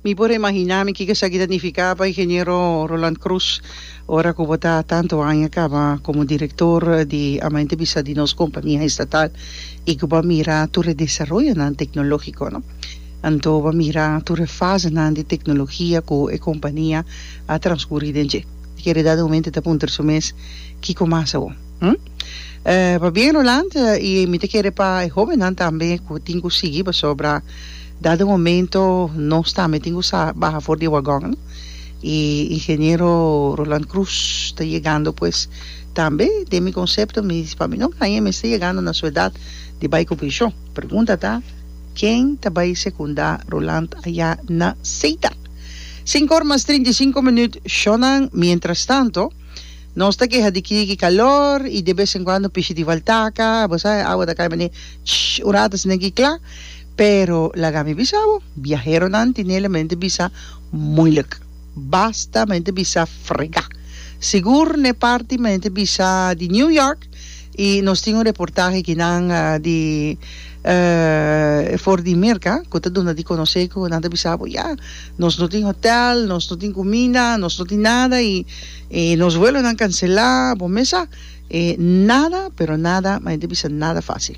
Mi por a imaginá mi kiko esaki ta nifiká pa Ingeniero Roland Croes ora ku bo ta tantu aña kaba komo direktor di Amante Bisa di nos kompania estatal i ku bo a mira tur e desaroyonan teknológiko, no? Anto bo a mira tur e fasenan di teknologia ku e kompania a transkurí den dje. E kere dada un momente ta puntra su mes, Kiko mas awor? Hm? Pa bien Roland y mi ta kere pa e hobennan tambe cu tin cu sigui pasobra dado e momento nos tambe tin cu sa baha for di e wagon y Ingeniero Roland Cruz ta yegando pues tambe den mi concepto mi pa mi no graña mester yegando na su edad di bay cu pension pregunta ta ken ta bay secunda Roland aya na Ceuta? Cinco or mas trinta y cinco minuut shonnan mientras tanto. Nos ta keha di kiki kalor i de bes en kuando pishi di faltaka, bo sa e awa ta kai manera shh un rato asina aki kla. Pero laga mi bisa bo, biaheronan tin nele manera te bisa muilik. Basta manera te bisa frega. Sigur n'e parti manera te bisa di New York, Y nos tin un reportahe aki nan di for di Merca cu ta duna di conoce cu nan ta bisa bo ya nos no tin hotel, nos no tin cuminda, nos no tin nada y nos vuelonan cancela, bo mes sa nada pero nada, ma e ta bisa nada facil.